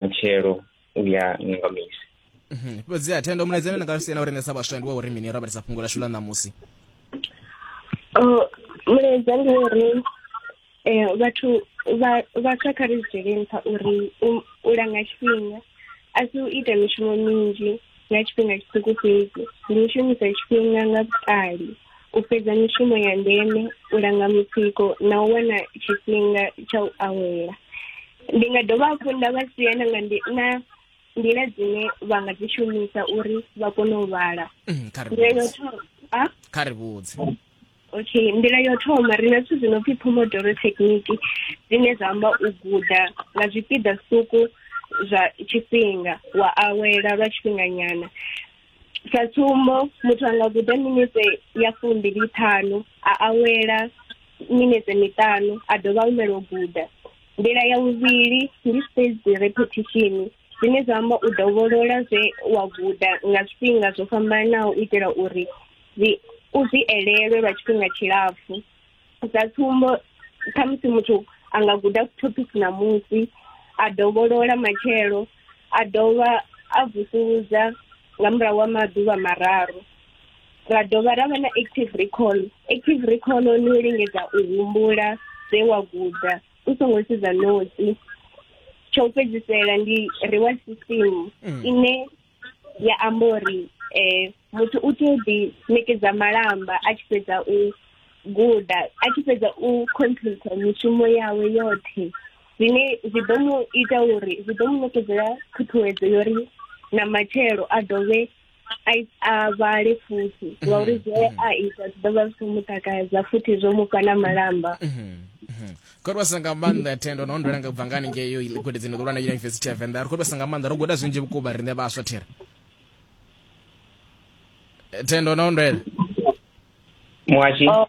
mutshelo u ya nga misi mhm. fhedzi a thendo mulaedza nda nga lu siena u rengesa vhaswa ndi wa uri mini ro vhalisa fhungo lashu ḽa ṋamusi oh, mulaedza ndi uri eh, vhathu vhaswa kha ri zwi dzhiele nṱha uri u langa tshifhinga a si u ita mishumo minzhi ya tshifhinga tshiṱuku fhedzi ndi u shumisa tshifhinga nga vhuṱali u fhedza mishumo ya ndeme u langa mutsiko na u wana tshifhinga tsha u awela ndi nga dovha hafhu nda vha sia na nga na nḓila dzine vha nga dzi shumisa uri vha kone u vhala mm, kha ri vhudze okay nḓila yo thoma ri na zwithu zwi no pfhi pomodoro thekhiniki zwine zwa amba u guda nga zwipiḓa zwiṱuku zwa tshifhinga wa awela lwa tshifhinganyana sa tsumbo muthu a nga guda minetse ya fumbili ṱhanu a awela minetse miṱanu a dovha humela u guda nḓila ya vhuvhili ndi spaced repetition zwine zwa amba u dovholola zwe wa guda nga zwifhinga zwo fhambanaho u itela uri u zwi elelwe lwa tshifhinga tshilapfu sa tsumbo khamusi muthu a nga guda topic ṋamusi a dovholola matshelo a dovha a vusuludza nga murahu wa maḓuvha mararu ra dovha ra vha na active recall active recall ni u lingedza u humbula zwe wa guda u songo sedza notsi tsha u fhedzisela ndi reward system mm. ine ya amba uri um muthu u tea u ḓi ṋekedza malamba a tshi fhedza u guda a tshi fhedza u complete mishumo yawe yoṱhe zwine zwi ḓo mu ita uri zwi ḓo mu ṋekedzela ṱhuṱhuwedzo yo ri na matshelo a dovhe a vhale futhi mhm. ngauri zwe mhm. a ita zwi ḓo vha zwi khou mu takadza futhi zwo mu fha na malamba mhm. kodwasa nga maanḓa thendo na ondola nga bva nga haningei yo gudedzini ḓulwa na yunivesithi ya venḓa ri kodwasa nga maanḓa ro guda zwinzhi vhukuma riṋe vhaswa thera eh, thendo na ondwela muhashi oh,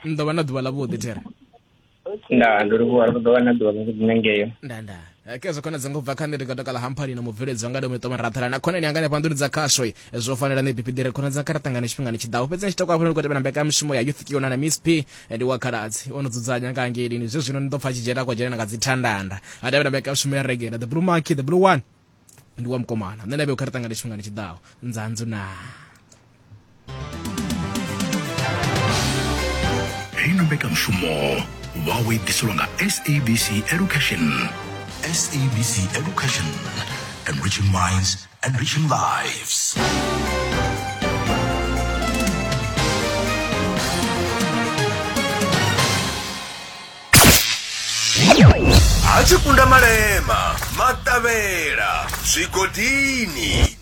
ni ḓo vha na ḓuvha ḽa vhuḓi thera ndaa ndi ri vhuhara ḓo wana ḓuvha ḽa dzine ngeyo nda nda Eh, kezo khona dzanga ubva kha nṋe ndi nga takala hamphalina mubveledzi wanga ndomito marathala na khonani yanga nefha nḓuni dza khaswe Eh, zwo fanela nṋe bipidire khona dza kha ṱangana tshifhingani tshiḓaho fhedzi nitshi takuafhela ndi khou tevhela mbekanyamushumo ya youth kiona na miss p Eh, ndi wa khaladzi o no dzudzanya nga hangeilini zwe zwino ni ḓo pfa a tshi dzhena kwa dzhena nga dzithandanda a tevhela mbekanyamushumo ya regela the blue monkey the blue one ndi wa mukomana nṋe na vhe u kha ri ṱangane tshifhingani tshiḓaho nzanzu na heino mbekanyamushumo wawe i ḓiselwa nga sabc education sabc education enriching minds enriching lives ha tshikunda malema maṱavhela zwigodini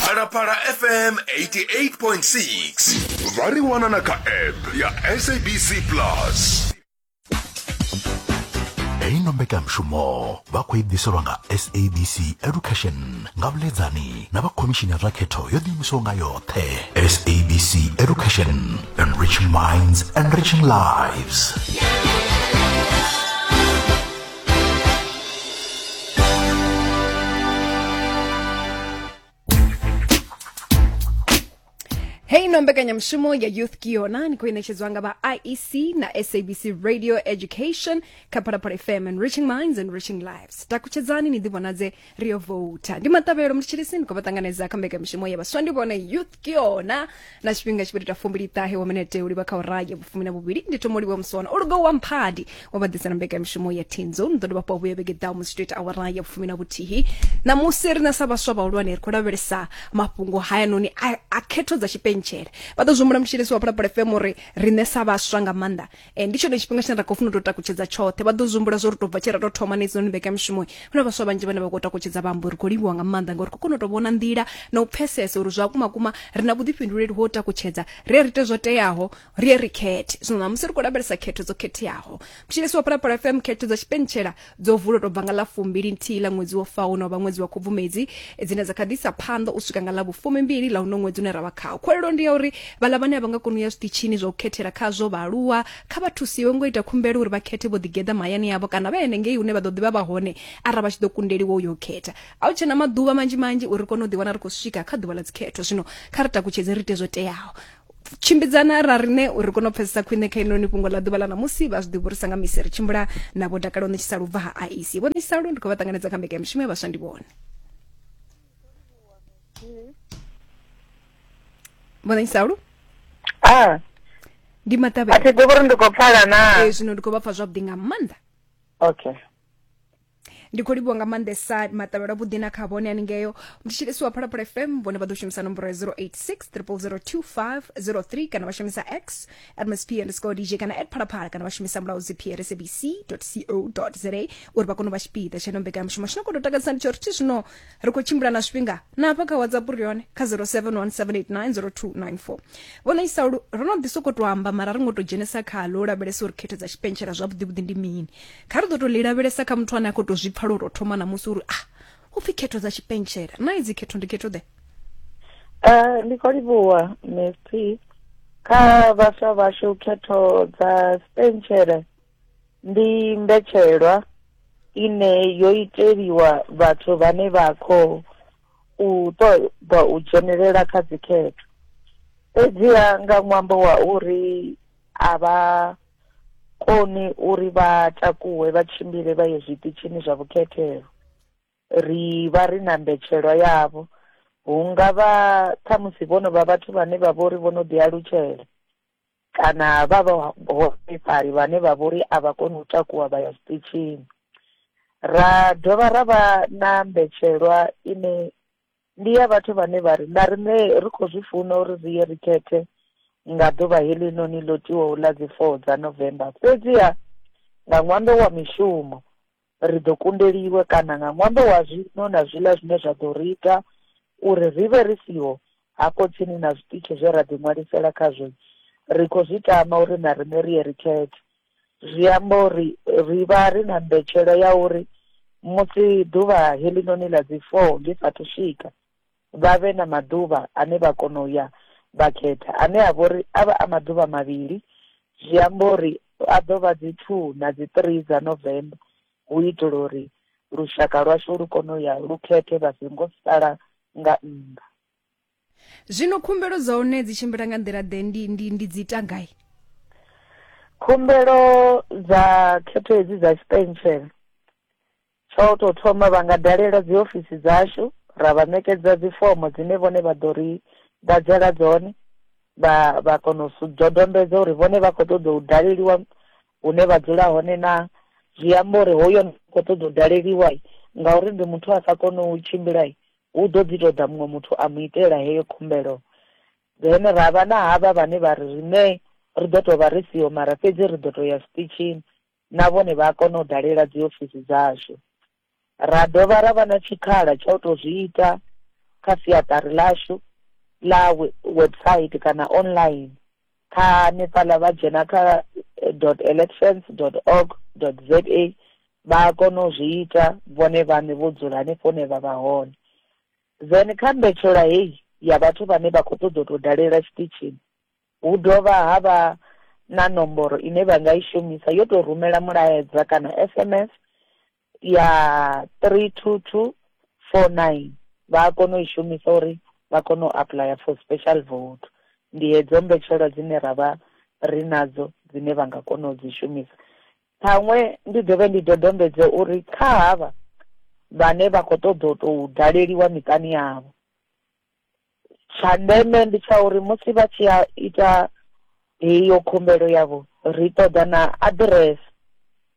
phalaphala fm 88.6 vha ri wana na kha app ya sabc plus heyi no mbekanyamushumo vha khou i ḓiselwa nga sabc education nga vhuḽedzani na vha khomishini ya zwa khetho yo ḓiimisaho nga yoṱhe sabc education Enriching minds, enriching lives. hei no mbekanyamushumo ya youth kiona ni khou inetshedzwa nga vha iec na sabc radio education kha phalaphala fm and reaching minds and reaching lives takutshedzani ni ḓivhonadze rio vouta ndi maṱavhelo mutshilisi ni khou vha ṱanganedza kha mbekanyamushumo ya vhaswa ndi vhone youth kiona na tshifhinga tshi khou ita fumbili ṱahe wa minete u livha kha ura ya vhufumi na vhuvhili ndi thoma u livha musona o lugaho wa mphadi wa vha ḓisa na mbekamishumo ya tinzo ni ḓo dovha hafhu vhuya vhege ḓaho musi tshi tou ita awara ya vhufumi na vhuthihi ṋamusi ri na sa vhaswa vhahulwane ri khou lavhelesa mafhungo hayanoni a, a khetho dza tshipentshele vha ḓo zwi humbula mutshilisi wa phalaphala fm uri riṋe sa vhaswa nga maanḓa e, ndi tshone tshifhinga tshine ra khou funa u tou takutshedza tshoṱhe vha ḓo zumbula zwo ri tou bva tshe ra tou thoma nedzinoni mbekanyamushumo hu na vhaswa vhanzhi vhane vha khou takutshedza vha amba uri khou livhuwa nga maanḓa ngauri khou kona u tou vhona nḓila na u pfesesa uri zwa kuma kuma ri na vhuḓifhinduleli ho takutshedza ri ri ite zwo teaho ri ri khethe zwino ṋamusi ri khou lavhelesa khetho dzo khetheaho mutshilisi wa phalaphala fm khetho dza tshipentshela dzo vula u tou bva nga ḽa fumbili nthihi ḽa ṅwedzi wo faho no vha ṅwedzi wa khubvumedzi dzine dza kha ḓi isa phanḓa u swika nga ḽa vhufumi mbili ḽa uno ṅwedzi une ra vha khawo khwelelo ndi ya uri vhaḽa vhane a vha nga koni u ya zwiṱitshini zwa u khethela khazwo vhaaluwa kha vha thusiwe ngo ita khumbelo uri vha khethe vho ḓigeḓa mahayani avho kana vha henengei hune vha ḓo ḓivha vha hone arali vha tshi ḓo kundeliwa u yo khetha a hu tshena maḓuvha manzhi manzhi uri kone u ḓiwana ri khou swika kha ḓuvha ḽa dzikhetho zwino kha ri takutshedze ri ite zwo teaho tshimbidzana ra rine uri kone u pfesesa khwine kha inoni fhungo ḽa ḓuvha ḽa ṋamusi vha zwi ḓivhurisa nga misi ri tshimbula na vho dakalo ṋetshisa lubva ha aisi vho ṋetshisa lu ndi khou vha ṱanganedza kha mbeka ya mushumo ya vhaswa ndi vhone vho ṋetshisa lu ah. ndi maṱavhe a thi ḓivhi uri ndi khou pfala na ee zwino ndi khou vha pfa zwavhuḓi nga maanḓa okay ndi khou livhuwa nga maanḓesa maṱavhelo avhuḓi na kha vhone haningeo mthetshelesi wa phalaphala fm vhone vha ḓo shumisa nomboro ya 086 kana vha shumisa x at msp underscore dj kana at phalaphala kana vha shumisa mulaudzi prsabc co za uri vha kone u vha tshipiḓa tsha ino mbekanyamushumo tshino kono takadzisa ndi tsho ri thi zwino ri khou tshimbila na zwifhinga na hafha kha whatsapp uri yone kha 0717890294 vhona isaulu ro no ḓi sokou to amba mara ri ngo to dzhenisa khalo u lavhelesa uri khetho dza tshipentshela zwavhuḓivhuḓi ndi mini kha ri ḓo tou ḽi lavhelesa kha muthu ane a khou tou zwi pfa lwo tou thoma ṋamusi uri a ah, u pfhi khetho dza tshipentshela na idzi khetho ndi khetho ḓe eh, ndi khou livhuwa mesi kha vhaswa vhashu khetho dza sipentshele ndi mbetshelwa ine yo iteliwa vhathu vhane vha khou u ṱoḓa u dzhenelela kha dzikhetho fhedziha nga ṅwambo wa uri a vha koni uri vha takuwe vha tshimbile vha ye zwiṱitshini zwa vhukhethelo. Ri vha ri na mbetshelwa yavho. Hu nga vha khamusi vho no vha vhathu vhane vha vho ri vho no ḓialutshela kana vha vhaholefhali vhane vha vho ri a vha koni u takuwa vha ya zwiṱitshini. Ra dovha ra vha na mbetshelwa ine Ndi ya vhathu vhane vha ri, Na riṋe ri khou zwi funa uri ri ye ri khethe nga ḓuvha heḽinoni ḽo tiwaho ḽa dzi 4 dza November, fhedziha nga ṅwambo wa mishumo, ri ḓo kundeliwa, kana nga ṅwambo wa zwiṅwe na zwiḽa zwine zwa ḓo ri ita uri ri vhe ri siho hafho tsini na zwiṱitshi zwe ra ḓiṅwalisela khazwo, ri khou zwi tama uri na riṋe ri ye ri khethe. zwi amba uri ri vha ri na mbetshelo ya uri musi ḓuvha heḽinoni ḽa dzi four ḽi saathu swika vha vhe na maḓuvha ane vha kona u ya vha khetha ane a vha uri a vha a maḓuvha mavhili zwi amba uri a ḓo vha dzi two na dzi three dza november hu itela uri lushaka lwashu lu kone u ya lu khethe vha songo sala nga nnḓa. zwino khumbelo dza hone dzi tshimbila nga nḓila ḓe ndi, ndi, ndi dzi ita gai khumbelo dza khetho hedzi dza tshipentshele tsha u tou thoma vha nga dalela dzi ofisi dzashu ra vha ṋekedza dzi fomo dzine vhone vha ḓo ri ḓadzela dzone vha vha kona u dodombedza uri vhone vha khou ṱoḓa u daleliwa hune vha dzula hone na zwi amba uri hoyo khou ṱoḓa u daleliwa ngauri ndi muthu a sa kone u tshimbila Hu ḓo ḓi tou ḓa muṅwe muthu a mu itela heyo khumbelo. Then ra vha na havha vhane vha ri riṋe ri ḓo tou vha ri siho mara fhedzi ri ḓo tou ya zwiṱitshini, na vhone vha a kona u dalela dziofisi dzashu. Ra dovha ra vha na tshikhala tsha u tou zwi ita kha siaṱari ḽashu ḽa website kana online Kha Nepal vha dzhena kha dot elections dot org dot za vha a kona u zwi ita vhone vhaṋe vho dzula hanefho hune vha vha hone. Then kha mbetshelwa heyi ya vhathu vhane vha khou ṱoḓa u tou dalela tshiṱitshini hu dovha ha vha na nomboro ine vha nga i shumisa yo tou rumela mulaedza kana SMS ya 32249 vha a kona u i shumisa uri vha kone u apuḽaya for special vote ndi hedzo mbetshelwa dzine ra vha ri nadzo dzine vha nga kona u dzi shumisa ṱhaṅwe ndi dovhe ndi dodombedze uri kha havha vhane vha khou ṱoḓa u tou daleliwa miṱani yavho tsha ndeme ndi tsha uri musi vha tshi ya ita heyo khumbelo yavho ri ṱoḓa na aḓirese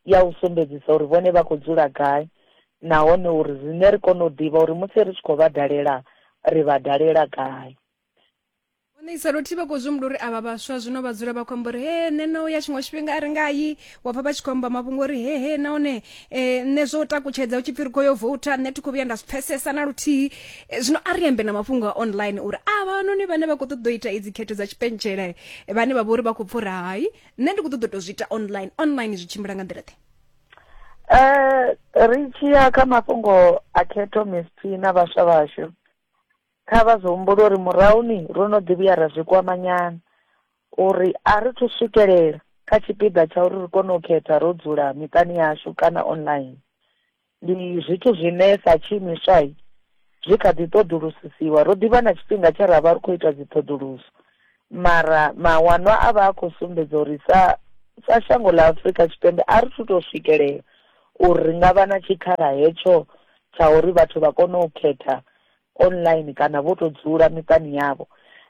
ya u sumbedzisa uri vhone vha khou dzula gai nahone uri riṋe ri kone u ḓivha uri musi ri tshi khou vha dalela ri vha dalela gai hone isa lothihi vha khou zwi humbula uri avha vhaswa zwino vha dzula vha khou amba uri he nṋe no ya tshiṅwe tshifhinga a ri nga yi wa pfa vha tshi khou amba mafhungo uri he he nahone eh, nṋe zwo takutshedza u tshi pfi ri khou yo vouta nṋe thi khou vhuya nda zwi pfesesa na luthihi Eh, zwino a ri ambe na mafhungo a online uri a vhanoni vhane vha khou ṱoḓa u ita idzi khetho dza tshipentshela eh, vhane vha vha uri vha khou pfura hai nṋe ndi khou ṱoḓa u tou zwi ita online online zwi tshimbila nga nḓila ḓe Eh, ri tshi ya kha mafhungo a khetho misthi na vhaswa vhashu kha vha zwi humbule uri murahuni ro no ḓi vhuya ra zwi kwamanyana uri a ri thu swikelela kha tshipiḓa tsha uri ri kone u khetha ro dzula miṱani yashu kana online. Ndi zwithu zwine sa tshiimiswa zwi kha ḓi ṱoḓulusisiwa. Ro ḓi vha na tshifhinga tshe ra vha ri khou ita dziṱhoḓuluso, mara mawanwa a vha a khou sumbedza uri sa sa shango ḽa Afrika Tshipembe a ri thu tou swikelela uri ri nga vha na tshikhala hetsho tsha uri vhathu vha kone u khetha online kana vho tou dzula miṱani yavho.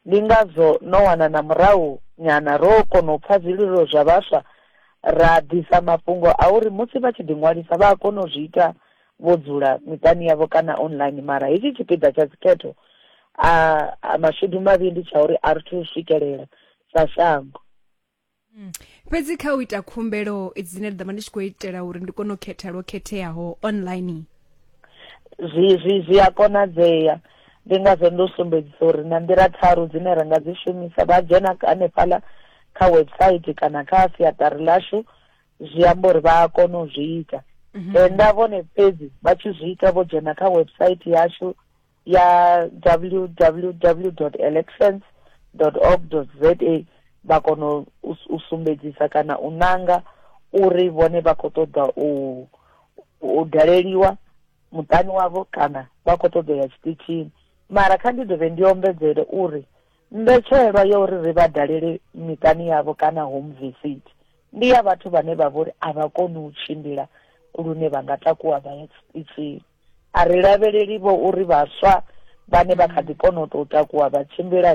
Ndi ngazwo no wana na murahu nyana ro kona u pfa zwililo zwa vhaswa ra ḓisa mafhungo a uri musi vha tshi ḓiṅwalisa vha a kona u zwi ita vho dzula miṱani yavho kana online mara hetshi tshipiḓa tsha dzikhetho a mashudu mavhi ndi tsha uri a ri thu swikelela sa shango Mm. fhedzi kha u ita khumbelo dzine nda ḓo vha ndi tshi khou itela uri ndi kone u khetha lwo khetheaho online zwi zwi zwi a konadzea ndi ngazwo ndo sumbedzisa uri na nḓila tharu dzine ra nga dzi shumisa vha dzhena hanefhaḽa kha website kana kha siaṱari ḽashu zwi amba uri vha a kona u zwi ita mhm. tenda vhone fhedzi vha tshi zwi ita vho dzhena kha website yashu ya www.elections org za vha kona u sumbedzisa kana u nanga uri vhone vha khou ṱoḓa u u daleliwa muṱani wavho kana vha khou ṱoḓa ya tshiṱitshini mara kha ndi dovhe ndi ombedzele uri mbetshelwa ya uri ri vha dalele miṱani yavho kana home visit ndi ya vhathu vhane vha vhori a vha koni u tshimbila lune vha nga takuwa vha ya tshiṱitshini A ri lavheleli-vho uri vhaswa vhane vha kha ḓi kona u tou takuwa vha tshimbila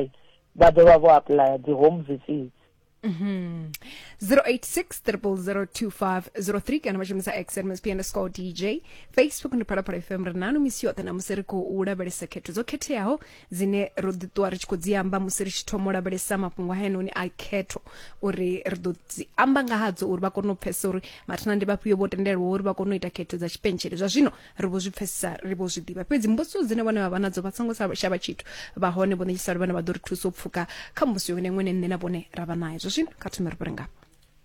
vha ḓo vha vho apuḽaya dzi home visits. 086 000 2503 kana vha shumisa x msp underscore dj facebook ndi phalaphala fm ri nanu misi yoṱhe na musi ri khou lavhelesa khetho dzo khetheaho dzine ro ḓi ṱuwa ri tshi khou dzi amba musi ri tshi thoma u lavhelesa mafhungo haenoni a khetho uri ri ḓo dzi amba nga hadzo uri vha kone u pfesesa uri mathina ndi vhafhio vho tendelwa uri vha kone u ita khetho dza tshipentshele zwa zwino ri vho zwi pfesesa ri vho zwi ḓivha fhedzi mbudziso dzine vhone vha vha nadzo vha songo shavha tshithu vha hone vho ṋetshisalo vhane vha ḓo ri thusa u pfuka kha mbudziso yone ṅwene nṋe na vhone ra vha nayo zwa zwino kha thome ri vhure ngafha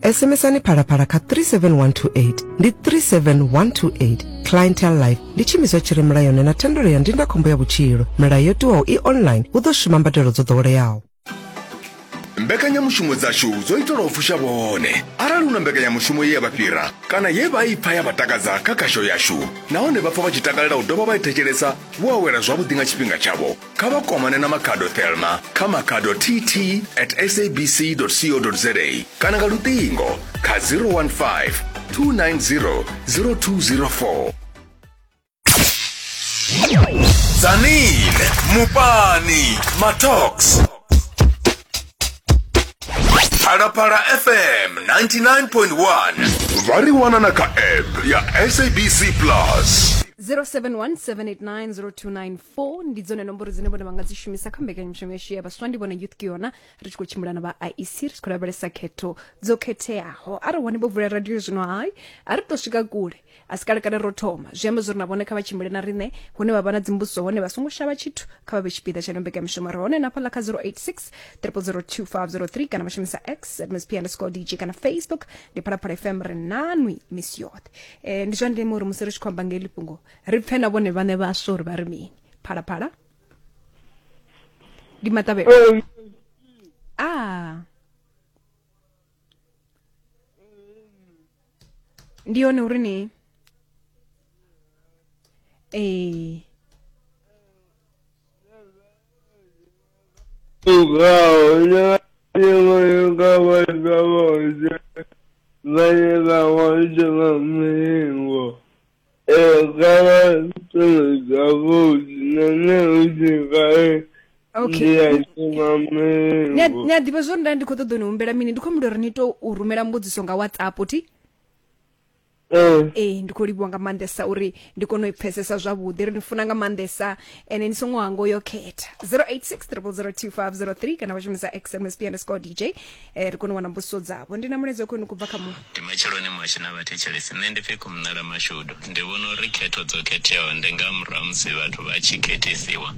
SMSani phalaphala kha 37128 ndi 37128 clientele life ndi tshiimiswa tshi re mulayoni na thendelo ya ndindakhombo ya vhutshilo milayo yo tiwaho i online hu ḓo shuma mbadelo dzo ḓoweleaho mbekanyamushumo dzashu dzo itelwa u fusha vhone arali hu na mbekanyamushumo ye ya vha fhira kana ye vha i pfa ya vha takadza kha khasho yashu nahone vha pfa vha tshi takalela u dovha vha i thetshelesa vho awela zwavhuḓi nga tshifhinga tshavho kha vha kwamane na makhado thelma kha makhado tt at sabc co za kana nga luṱingo kha 015 290 0204 zanine mupani matox phalaphala fm 99.1 vha ri wana na kha app ya sabc plus 0717890294 four ndi dzone nomboro dzine vhone vha nga dzi shumisa kha mbekanyamushumo yashu ya vhaswa ndi vhone youth kiona ri tshi khou tshimbila na vha iec ri tshi khou lavhelesa khetho dzo khetheaho arali hone vho vula radio zwino hai a ri to swika kule a si kale kale ro thoma zwi amba zwori na vhone kha vha tshimbile na riṋe hune vha vha na dzimbudziso hone vha songo shavha tshithu kha vha vhe tshipiḓa tsha mbekanyamushumo ri hone na fhaḽa kha 086 002503 kana vha shumisa x at msp underscore dj kana facebook ndi phalaphala fm ri nanwi misi yoṱhe Eh, ndi zwa ndeme uri musi ri tshi khou amba ngeli fhungo ri pfe na vhone vhaṋe vhaswa uri vha ri mini phalaphala ndi maṱavhelo a ah. ndi yone uri ni ee Vale, vamos, vamos, ni a ḓivha zwori nda ndi khou ṱoḓa ni humbela mini ndi khou humbela uri ni to u rumela mbudziso nga whatsapp ti ee ndi khou livhiwa nga maanḓesa uri ndi kone u i pfesesa zwavhuḓi ri ni funa nga maanḓesa ene ni songo hango yo khetha 086 002 503 kana vha shumisa xmsp underscore dj eh, ri kone u wana mbudziso dzavho ndi na mulaedza khwenu kubva kha mu Ndi matsheloni mwashu na vhathetshelesi. Nṋe ndi pfi Kumnala Mashudu. Ndi vhona uri khetho dzo khetheaho ndi nga murahu ha musi vhathu vha tshi khethisiwa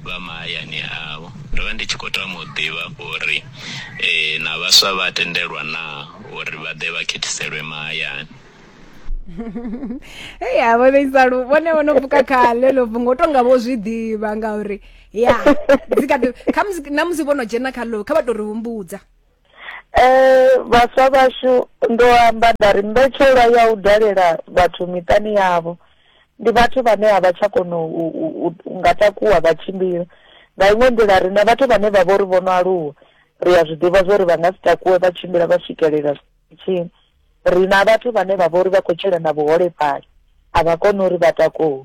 vha mahayani avho. Ndo vha ndi tshi khou tama u ḓivha uri eh, na vhaswa vha tendelwa naa uri vha ḓe vha khethiselwe mahayani. hei havho vheisalu vhone vho no pfuka khale ḽo bvu ngo tonga vho zwi ḓivha ngauri ya dzi kha ḓi- kha musi na musi vho no dzhena kha lo kha vha tou ri humbudza Eh, vhaswa vhashu ndo amba nda ri mbetshelwa ya u dalela vhathu miṱani yavho ndi vhathu vhane a vha tsha kona u, u, u, u nga takuwa vha tshimbila nga iṅwe nḓila ri na vhathu vhane vha vho ri vho no aluwa ri a zwi ḓivha zwo ri vha nga si takuwe vha tshimbila vha swikelela tshini ri na vhathu vhane vha vho ri vha khou tshila na vhuholefhali a vha koni uri vha takuwe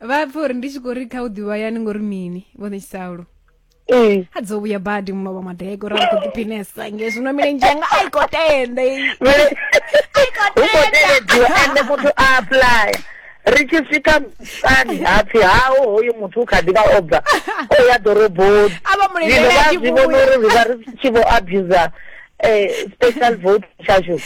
vha pfa uri ndi tshi khou ri kha u ḓivha yani ngori mini vho ṋetshisalo ee a dzo vhuya badi muno vha madego ra khou ḓiphinesa nge zwino milenzhe yanga a i khou tenda i Vele- i khou hu khou teledziwa tenda ende muthu a aplaya ri tshi swika musani hapfi hawo hoyu muthu u kha ḓi vha o bva o ya ḓoroboni A vha mu zwino lindele a vha tshi zwi vhona vhuya. uri ri vha ri tshi vho abuser um special vote tshashu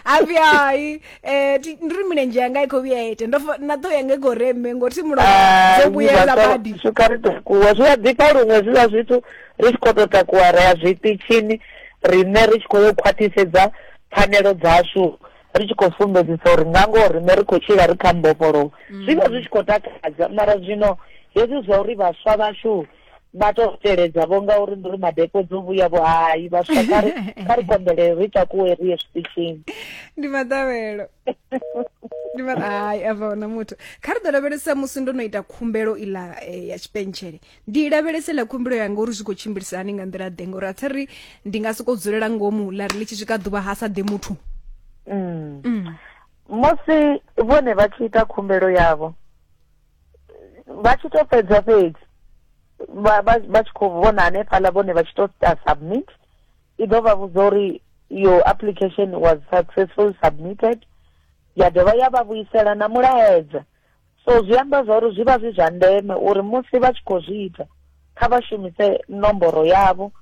hapfi hai Eh, ti- ndi ri milenzhe yanga i khou vhuya ya ita ndo fa- na ṱhoho yanga i khou reme ngori thi mulomo Ah, dzo vhuyela badi swika ri takuwa zwi a ḓifha luṅwe zwiḽa zwithu ri tshi khou tou takuwa ri ya zwiṱitshini riṋe ri tshi khou yo khwaṱhisedza pfanelo dzashu ri tshi khou sumbedzisa uri nga ngoho riṋe ri khou tshila ri kha mbofholowo zwi vha zwi tshi khou takadza mara zwino hezwi zwa uri vhaswa vhashu vha to teledza vho ngauri ndi uri madepo dzo vhuya vho hai vhaswa kha ri kha ri konḓelele ri takuwe ri ye zwiṱitshini ndi maḓavhelo ndi ma hai a vha na muthu kha ri ḓo lavhelesa musi ndo no ita khumbelo iḽa eh, ya tshipentshele ndi i lavhelese ḽa khumbelo yanga uri zwi khou tshimbilisa hani nga nḓila ḓe ngori a thi ri ndi nga sokou dzulela ngomu ḽa ri ḽi tshi swika ḓuvha ha sa ḓe muthu Mm. musi vhone vha tshi ita khumbelo yavho vha tshi to fhedza fhedzi vha tshi khou vhona hanefhaḽa vhone vha tshi to ta submit i ḓo vha vhudza uri your application was successful submitted ya dovha ya vha vhuisela na mulaedza so zwi amba zwa uri zwi vha zwi zwa ndeme uri musi vha tshi khou zwi ita kha vha shumise nomboro yavho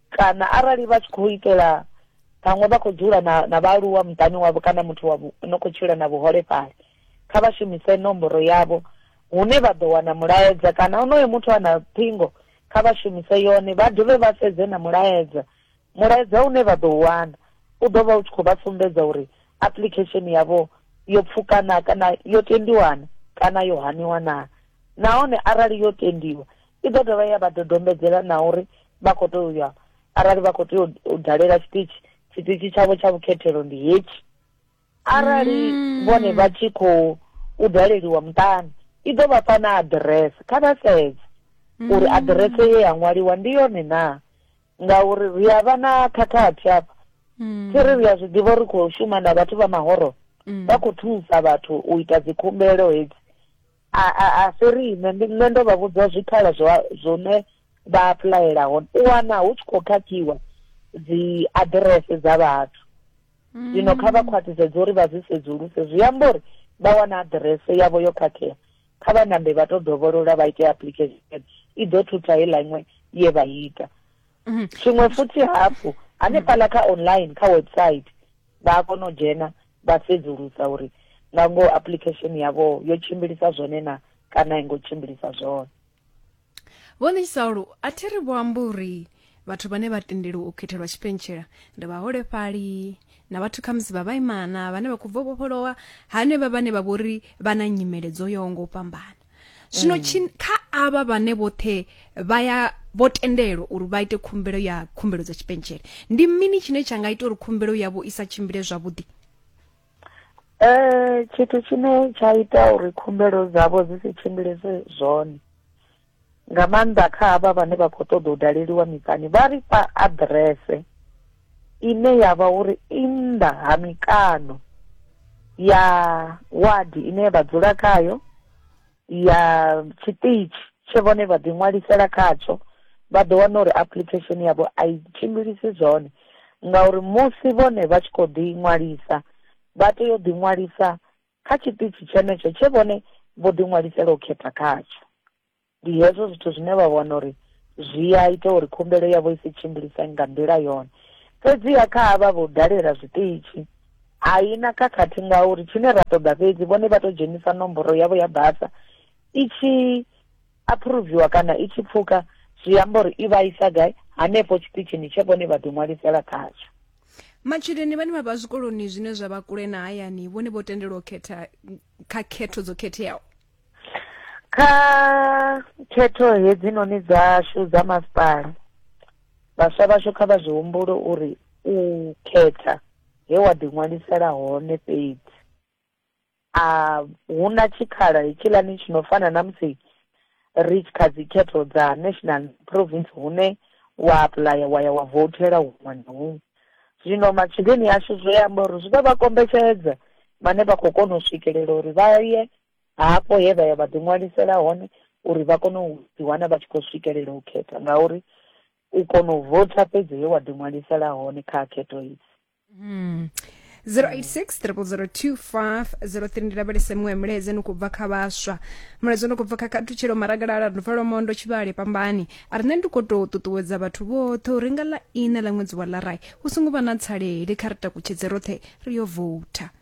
kana arali vha tshi khou itela vhaṅwe vha khou dzula na na vhaaluwa muṱani wavho kana muthu wa no khou tshila na vhuholefhali kha vha shumise nomboro yavho hune vha ḓo wana mulaedza kana onoyo muthu a na ṱhingo kha vha shumise yone vha dovhe vha sedze na mulaedza mulaedza une vha ḓo wana u ḓo vha u tshi khou vha sumbedza uri application yavho yo pfuka na kana yo tendiwana kana yo haniwa na nahone arali yo tendiwa i ḓo dovha ya vha dodombedzela na uri vha khou tea u ya arali vha khou tea u dalela tshiṱitshi tshiṱitshi tshavho tsha vhukhethelo ndi hetshi arali mm. vhone vha tshi khou u daleliwa muṱani i ḓo vha fha na aḓirese kha vha sedze mm. uri aḓirese ye ya ṅwaliwa ndi yone na ngauri ri a vha na khakhathi afha mm. thi ri ri a zwi ḓivha uri khou shuma na vhathu vha mahoro vha khou thusa vhathu u ita dzikhumbelo hedzi a a a si riṋe ndi nṋe ndo vha vhudza zwikhala zwa zwone vha apuḽayela hone u wana hu tshi khou khakhiwa dzi aḓirese dza vhathu mm. zwino kha vha khwaṱhisedze uri vha zwi sedzuluse zwi amba uri vha wana aḓirese yavho yo khakhea kha vha nambe vha tou dovholola vha ite application i ḓo thutha heiḽa iṅwe ye vha ita mm-hmm. tshiṅwe futhi hafhu hanefhaḽa kha online kha website vha a kona u dzhena vha sedzulusa uri nga ngoho application yavho yo tshimbilisa zwone na kana a i ngo tshimbilisa zwone vho ṋisalo a thi ri vho amba uri vhathu vhane vha tendeliwa u khethelwa tshipentshela ndi vhaholefhali na vhathu khamusi vha vhaimana vhane vha khou bva vhofholowa hanevha vhane vha vhori vha na nyimele dzo yaho ngo fhambana zwino mm. kha avha vhane vhoṱhe vha ya vho tendelwa uri vha ite khumbelo ya khumbelo dza tshipentshele ndi mini tshine tsha nga ita uri khumbelo yavho i sa tshimbile zwavhuḓi um tshithu tshine tsha ita uri khumbelo dzavho dzi si tshimbilese zwone nga maanḓa kha havha vhane vha khou ṱoḓa u daleliwa miṱani, vha ri fha aḓirese ine ya vha uri i nnḓa ha mikano ya wadi ine vha dzula khayo, ya tshiṱitshi tshe vhone vha ḓiṅwalisela khatsho, vha ḓo wana uri application yavho a i tshimbilisi zwone ngauri musi vhone vha tshi khou ḓiṅwalisa vha tea u ḓiṅwalisa kha tshiṱitshi tshenetsho tshe vhone vho ḓiṅwalisela u khetha khatsho. ndi hezwo zwithu zwine vha vhona uri zwi a ita uri khumbelo yavho i si tshimbilisane nga nḓila yone fhedziha kha havha vho dalela zwiṱitshi a i na khakhathi ngauri tshine ra ṱoḓa fhedzi vhone vha tou dzhenisa nomboro yavho ya basa i tshi aphuruviwa kana i tshi pfuka zwi amba uri i vha isa gai hanefho tshiṱitshini tshe vhone vha ḓiṅwalisela khatsho matshudeni vhane vha vha zwikoloni zwine zwa vha kule na hayani vhone vho tendelwa u khetha kha khetho dzo khetheaho kha khetho hedzinoni dzashu dza masipala vhaswa vhashu kha vha zwi humbulo uri u khetha he wa ḓiṅwalisela hone fhedzi a hu na tshikhala hetshiḽani tshi no fana na musi ri kha dzi khetho dza national province hune wa apuḽaya wa ya wa vothela huṅwe na huṅwe zwino matshudeni ashu zwi amba uri zwi ḓo vha kombetshedza vhane vha khou kona u swikelela uri vha ye hafho he vha ya vha ḓiṅwalisela hone uri vha kone u ḓiwana vha tshi khou swikelela u khetha ngauri u kona u votha fhedzi he wa ḓiṅwalisela hone kha khetho idzi hmm. 086 0002503 ndi lavhelese muṅwe milaedza ni khou bva kha vhaswa mulaedza ni khou bva kha khathutshelo maragalala nduvalo mondo tshivhale pambani a rine ndi khou tou ṱuṱuwedza vhathu vhoṱhe uri nga ḽa ine ḽa ṅwedzi wa larai hu songo vha na tsalele kha ri takutshedze roṱhe ri yo voutha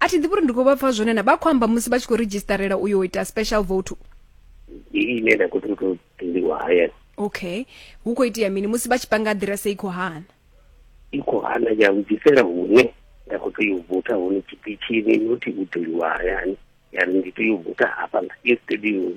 a thi ḓivhi uri ndi khou vha pfa zwone na vha khou amba musi vha tshi khou redzhistarela uyo ita special vote ine nda khou tou tendiwa hayani okay hu khou itea mini musi vha tshi panga aḓirese i khou hana i khou hana ya vhudzisela hune nda khou tea u vota hone tshiṱitshini nothi u ḓoliwa hayani ya ri ndi tea u vota hafha nga yesterday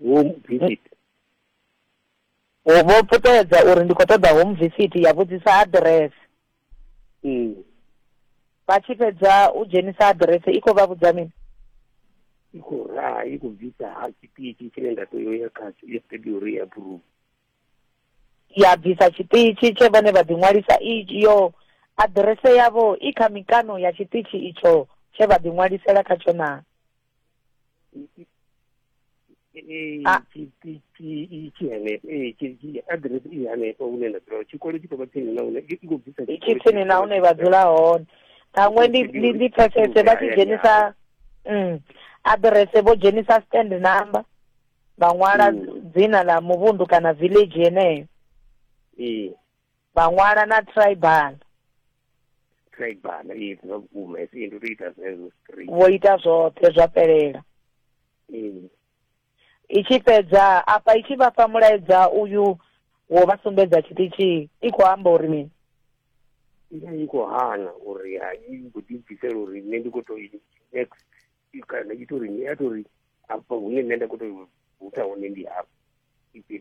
home visit o vho puṱedza uri ndi khou ṱoḓa home visit ya vhudzisa address mm. vha tshi fhedza u dzhenisa address i khou vha vhudza mini i khou raha i khou bvisa ha tshiṱitshi tshine nda tea ya khatsho i sitedi uri ya approve ya bvisa tshiṱitshi tshe vhone vha ḓiṅwalisa iyo aḓirese yavho i kha mikano ya tshiṱitshi itsho tshe vha ḓiṅwalisela khatsho na tsini na hune vha dzula hone ṱhaṅwe ndi pfesese vha tshi dzhenisa mm, aḓirese vho dzhenisa stand number vha ṅwala mm. dzina ḽa muvhundu kana village yeneyo vha ṅwala na tribal tribal ee zwa vhukuma hesi ndi to ita zwezwo straight vho ita zwoṱhe zwa fhelela ee i tshi fhedza afha i tshi vha fha mulaedza uyu wo vha sumbedza tshiṱitshi i khou amba uri mini i vha i khou hana uri ha i khou ḓibvisela uri nṋe ndi khou to next kana i tori ni a tori afha hune nṋe nda kho to hutha hone ndi hafha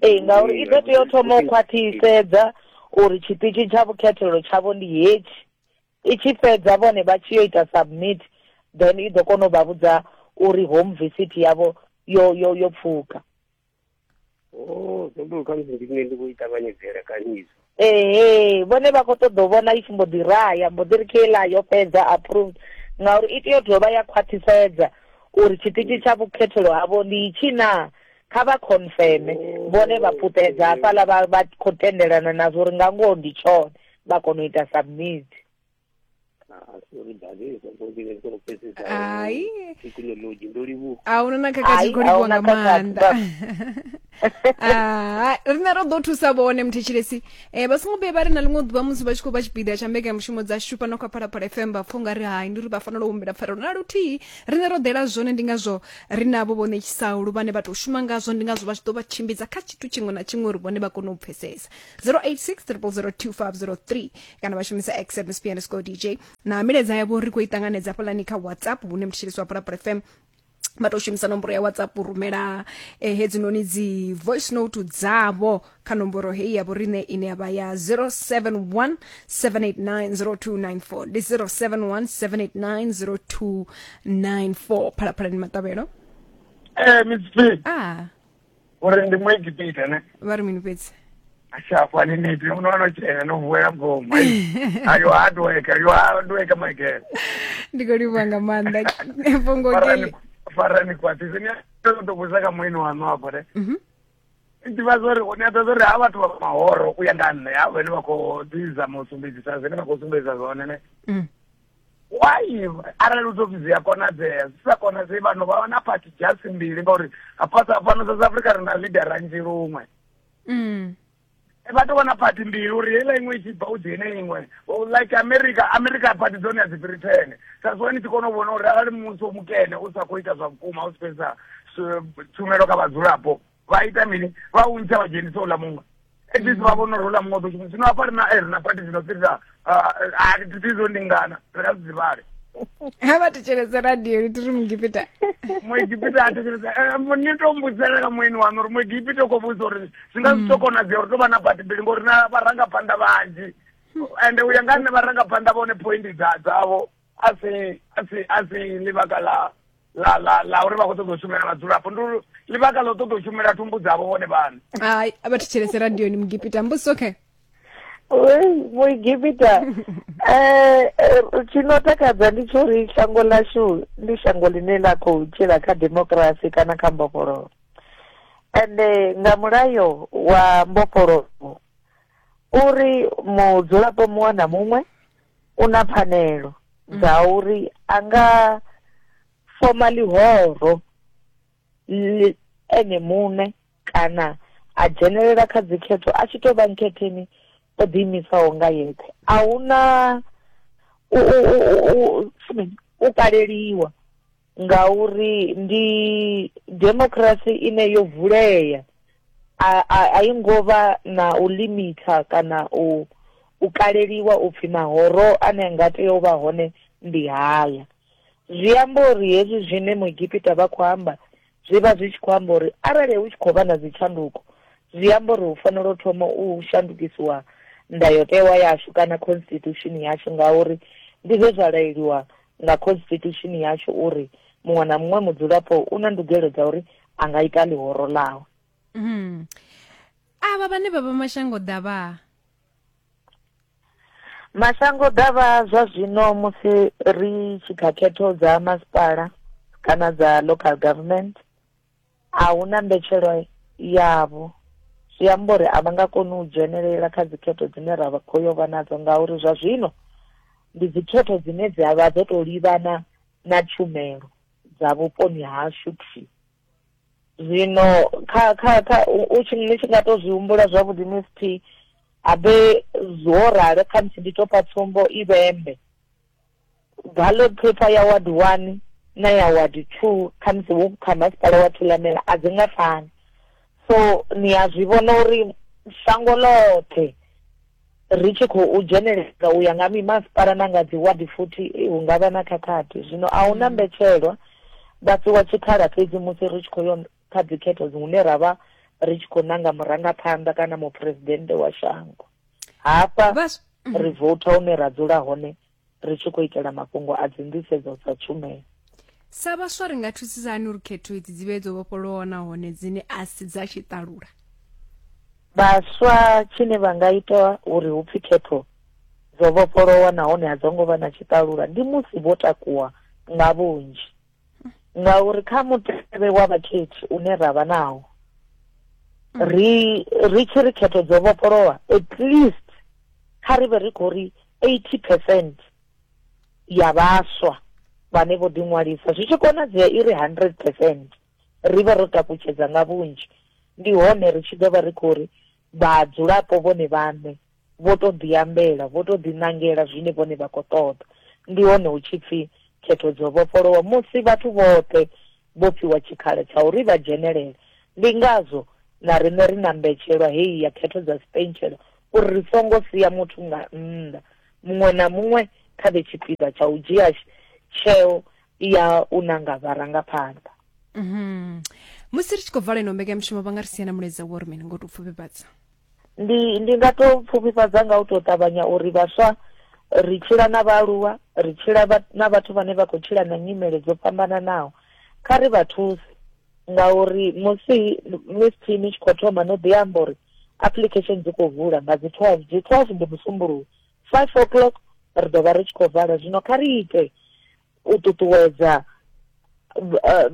ee ngauri i ḓo tea u thoma u khwaṱhisedza uri tshiṱitshi tsha vhukhethelo tshavho ndi hetshi i tshi fhedza vhone vha tshi yo ita submit then i ḓo kona u vha vhudza uri home visit yavho yo yo yo pfuka oh sobo khamusi ndi nṋe ndi khou i ṱavhanyedzela kani izwo ehe vhone vha khou ṱoḓa u vhona i tshi mbo ḓi raya mbo ḓi ri kela yo fhedza approved ngauri i tea u dovha ya khwaṱhisedza uri tshiṱitshi tsha vhukhethelo havho ndi itshi na kha vha confirme vhone vha puṱedza hafhaḽa vha vha khou tendelana nazwo uri nga ngoho ndi tshone vha kona u ita submit hai thekhinolodzhi ndo livhuwa a una na khakha tshi khou livhuwa nga maanḓa ah, rine ro ḓo thusa vhone muthetshelesi um eh, vha songo vhuye vha ri na ḽiṅwe ḓuvha musi vha tshi khou vha tshipiḓa tsha mbekanyamushumo dza shupa na khou phalaphala fm vha pfha nga ri hai ndi uri vha fanela u humbela pfarelo na luthihi rine ro ḓela zwone ndi ngazwo ri navho vho ṋetshisaulu vhane vha tou shuma ngazwo ndi ngazwo vha tshi ḓo vha tshimbidza kha tshithu tshiṅwe na tshiṅwe uri vhone vha kone u pfesesa 086 002 503 kana vha shumisa x msp underscore dj na milaedza yavho ri khou i ṱanganedza hafhaḽani kha whatsapp hune mthetshelesi wa pulapula fm vha tou shumisa nomboro ya whatsapp u rumela eh, hedzinoni dzi voice note dzavho kha nomboro heyi yavho riṋe ine ya vha ya 071 789 ndi 071 phalaphalani maṱavhelo Eh, Miss P. ah uri ndi muegipita ne vha ri mini fhedzi ashafo aniniti unoona chena novuwela mgomo ayo hardwork ayo hardwork maigere ndi khou livhuwa nga maanḓa fhungo farani keli farani kwatisi ni tokutokusa ka muini wanu hapo ne Mhm. ndiva zori ni ata zori ha vhathu vha mahoro u ya nga nṋe ha vhene vha khou ḓizama u sumbedzisa zwine vha khou sumbedzisa zwone ne Mm. why arali u tou pfi zwi a konadzea zwi sa konadzei vhano vha vha na party just mbili ngauri hafhasa fhano south africa ri na leader ranzhi luṅwe mm. e, vha tou vha na party mbili uri heiḽa iṅwe i tshi bva u dzhene iṅwe like america america party dzone a dzi fhiri thene sa zwo ni tshi kona u vhona uri arali muvhuso mukene u sa khou ita zwa vhukuma u si fhedzisa tshumelo kha vhadzulapo vha ita mini vha u ntsha vha dzhenisa uḽa muṅwe at least vha vhona uri uḽa muṅwe ḓo zwino hafha ri na eh, ri na pati zwino fhirisa a ri thi zwo ndingana ri nga zwi dzivhale ha vha thetshelese radio ri tiri muegipita muegipita a thetshelese eh, ni to mbudzela ka mueni wanu uri muegipita u khou vhudza uri zwi nga zwi to mm. konadzea uri to vha na pati mbili ngori na vharangaphanḓa vhanzhi ende u ya nga nṋe vharangaphanḓa vhone point dzavho a si a si a si ḽivhaka ḽa ḽa ḽa ḽa uri vha khou ṱoḓa u shumela vhadzulapo ndi uri ḽivhaka ḽa u ṱoḓa u shumela thumbu dzavho vhone vhaṋe hai a vha thetshelese radioni mugipita mbusi okay muigipita eh, eh, tshino takadza ndi tsho ri shango lashu ndi shango ḽine ḽa khou tshila kha demokirasi kana kha mbofholowo ende nga mulayo wa mbofholowo uri mudzulapo muṅwe na muṅwe u na pfanelo dza mm. uri a nga foma ḽihoro ene muṋe kana a dzhenelela kha dzikhetho a tshi tou vha nkhetheni o ḓiimisaho nga yeṱhe a hu na u kaleliwa ngauri ndi democracy ine yo vulea a a a i ngo vha na u limitha kana u u kaleliwa upfhi mahoro ane nga tea u vha hone ndi haya zwi amba uri hezwi zwine muegipita vha khou amba zwi vha zwi tshi khou amba uri arali hu tshi khou vha na dzitshanduko zwi amba uri hu fanela u thoma u shandukisiwa ndayotewa yashu kana constitution yashu ngauri ndi zwe zwa laeliwa nga khonsititushini yashu uri muṅwe na muṅwe mudzulapo u na ndugelo dza uri a nga ita ḽihoro ḽawe mm. avha vhane vha vha mashango ḓavha mashango ḓavha zwa zwino musi ri tshi kha khetho dza masipala kana dza local government A hu na mbetshelwa yavho, zwi amba uri a vha nga koni u dzhenelela kha dzikhetho dzine ra khou yo vha nadzo ngauri zwa zwino ndi dzikhetho dzine dza vha dzo tou livhana na tshumelo dza vhuponi hashu thwi. Zwino kha kha kha u tshi ni tshi nga tou zwi humbula zwavhuḓi ni si thi habe zwo ralo, khamusi ndi tou fha tsumbo, i vhembe. ballot paper ya ward one na ya ward two khamusi wo kha masipala wa thulamela a dzi nga fani so ni a zwi vhona uri shango ḽoṱhe ri tshi khou dzheneleza u ya nga mimasipala na nga dzi ward futhi eh, hu nga vha na khakhathi zwino a hu na mm. mbetshelwa vha fhiwa tshikhala fhedzi musi ri tshi khou yo kha dzikhetho hune ra vha ri tshi khou nanga murangaphanḓa kana muphuresidennde wa shango hafha mm. ri vouta hune ra dzula hone ri tshi khou itela mafhungo a dzinḓisedzo dza tshumelo sa vhaswa ri nga thusisa hani uri khetho idzi dzi vhe dzo vhofholowa nahone dzine a si dza tshiṱalula vhaswa tshine vha nga ita uri hu pfi khetho dzo vhofholowa nahone a dzo ngo vha na tshiṱalula ndi musi vho takuwa nga vhunzhi ngauri kha mutevhe wa vhakhethi une ra vha nawo mm. ri ri tshi ri khetho dzo vhofholowa at least kha ri vhe ri khou ri eighty percent ya vhaswa vhane vho ḓiṅwalisa zwi tshi konadzea i ri hundred percent ri vhe ro takutshedza nga vhunzhi ndi hone ri tshi ḓo vha ri khou ri vhadzulapo vhone vhaṋe vho tou ḓiambela, vho tou ḓiṋangela zwine vhone vha khou ṱoḓa. Ndi hone hu tshi pfi khetho dzo vhofholowa musi vhathu vhoṱhe vho fhiwa tshikhala tsha uri vha dzhenelele. Ndi ngazwo na riṋe ri na mbetshelwa heyi ya khetho dza sipentshela uri ri songo sia muthu nga nnḓa. Muṅwe na muṅwe kha vhe tshipiḓa tsha u dzhia tsheo ya u nanga vharangaphanḓa. Musi ri tshi khou vala ino mbekanyamushumo vha nga ri sia na mulaedza wo ri mini ngo tou pfufhifhadza? ndi ndi nga to pfufhifhadza nga u to ṱavhanya uri vhaswa ri tshila na vhaaluwa ri tshila na vhathu vhane vha khou tshila na nyimele dzo fhambananaho kha ri vha thuse ngauri musi miss team i tshi khou thoma no ḓi amba uri application dzi khou vula nga dzi twelve dzi twelve ndi musumbuluwo five o'clock ri ḓo vha ri tshi khou vala zwino kha ri ite u ṱuṱuwedza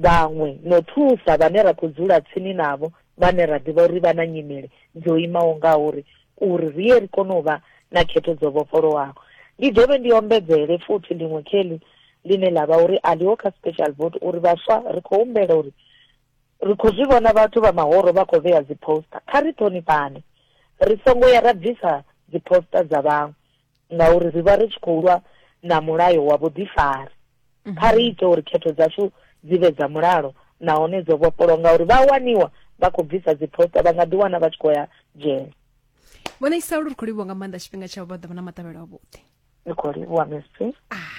vhaṅwe no thusa vhane ra khou dzula tsini navho vhane ra ḓivha uri vha na nyimele dzo imaho nga uri uri ri ye ri kone u vha na khetho dzo vhofholowaho ndi dovhe ndi ombedzele futhi ḽiṅwe kheli ḽine ḽa vha uri a ḽiho kha special vote uri vhaswa ri khou humbela uri ri khou zwi vhona vhathu vha mahoro vha khou vhea dziposta kha ri ṱhonifhane ri songo ya ra bvisa dziposta dza vhaṅwe ngauri ri vha ri tshi khou lwa na mulayo wa vhuḓifari. Mhm. Kha ri ite uri khetho dzashu dzi vhe dza mulalo nahone dzo vhofholowa ngauri vha waniwa vha khou bvisa dziphosta vha nga ḓiwana vha tshi khou ya dzhele vhona isalo ri khou livhuwa nga maanḓa tshifhinga tshavho vha ḓo vha na maṱavhelo avhuḓi ri khou livhuwa msp ah.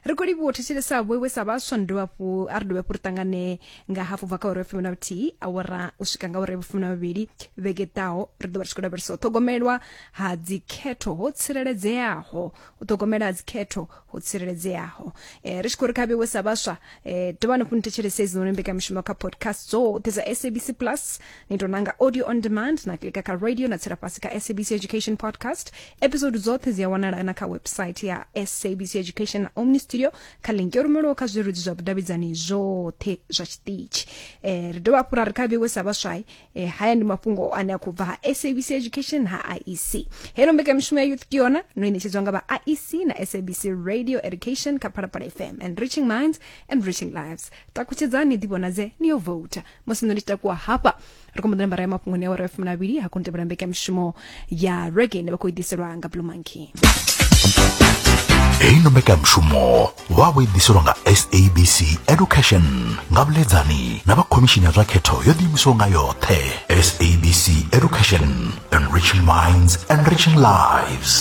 ri khou livhuwa u thetshelesa vhoiwe sa vhaswa ni dovha hafhu a ri dovhe hafhu ri ṱangane nga hafhu bva kha uri fumi na vhuthihi awara u swika nga uri vhufumi na vhuvhili vhege ḓaho ri ḓovha ri tshi khou lavhelesa u ṱhogomelwa ha dzikhetho ho tsireledzeaho u ṱhogomela ha dzikhetho ho tsireledzeaho um eh, ri tshi khou ri kha vheiwe sa vhaswa um eh, dovha ni fhuni thetshelesa izinoni mbekamishumo kha podcast dzoṱhe dza sabc plus ni tou nanga audio on demand na klika kha radio na tsela fhasi kha sabc education podcast episode dzoṱhe dzi a wanala na kha website ya sabc education na omni studio kha link yo rumelwaho kha zwirudzi zwa vhudavhidzani zwoṱhe zwa tshiṱitshi eh, ri dovha hafhu ra ri kha vhewe sa vhaswai eh, haya ndi mafhungo ane a khou bva ha sabc education ha iec heno mbekamishumo ya youth kiona no inetshedzwa nga vha iec na sabc radio education kha phalaphala fm and reaching minds and reaching lives takutshedzani ḓivhonadze ni yo vouta musi nṋe ndi tshi takuwa hafha ri khou mbo ḓi nambara ya mafhungoni ya wara fumi na vhili ha koni tevhela mbekamishumo ya rege ine vha khou i ḓiselwa nga blue monkey heino mbekanyamushumo vha vho i ḓiselwa nga sabc education nga vhuledzani na vha khomishini ya zwa khetho yo ḓiimisaho nga yoṱhe sabc education enriching minds enriching lives